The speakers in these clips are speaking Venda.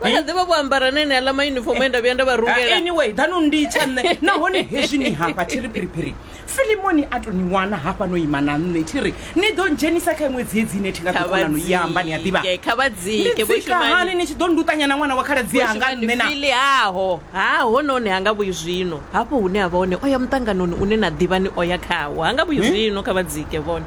vha kha ḓivha vho ambara na ene aḽa mayunifomo e nda vhuya nda vha rungela anyway danu ndi tsha nṋe nahone hezwi ni hafha thi ri phiriphiri filimoni a to ni wana hafha no ima na nṋe thi ri ni ḓo ndzhenisa kha iṅwe dziedzi ine thi nga kha ḓikonano i amba ni a ḓivha vhadzike kha vhadzike vho nditsika hani shumani ni tshi ḓo nduṱanya na ṅwana wa khaladzi anga nṋe na fili haho ha hononi ha nga vhuyi zwino hafho hune a vha hone o ya muṱanganoni une na ḓivha ni o ya khawo ha nga vhuyi zwino kha vhadzike vhone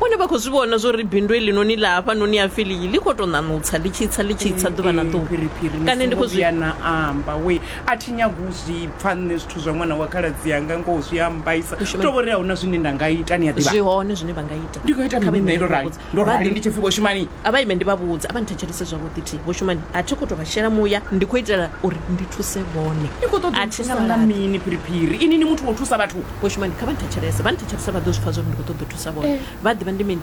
Vhone vha khou zwi vhona zwo ri bindu heḽinoni ḽa hafhanoni ha Filiyi ḽi khou tou ṋaṋutsa ḽi tshi tsa ḽi tshi tsa ḓuvha na Ee, ḓuvha. phiriphiri ni Kana ndi songo khou zwi vhuya na amba we a thi nyagi u zwi pfa nṋe zwithu zwa ṅwana wa khaladzi anga ngoho zwi a mbaisa Hu shume- tou vho ri a hu na zwine nda nga ita ni a ḓivha zwi hone zwine vha nga ita. ndi nga ita Kha vha mini ime nṋe ndi ndo vha rali vhudze. ndo Vha rali ḓi- ndi tshi pfi vho shumani A vha ime ndi vha vhudze, a vha nthetshelese zwavhuḓi thi. Vho Shumani, a thi khou tou vha shela muya, ndi khou itela uri ndi thuse vhone. ni khou ṱoḓa A u thi thusa nga saladi. mini phiriphiri ini ni muthu wa u thusa vhathu Vho Shumani, kha vha nthetshelese, vha nthetshelese vha ḓo zwi pfa zwa uri ndi khou ṱoḓa u thusa vhone. Vha a ḓivha ndi mini.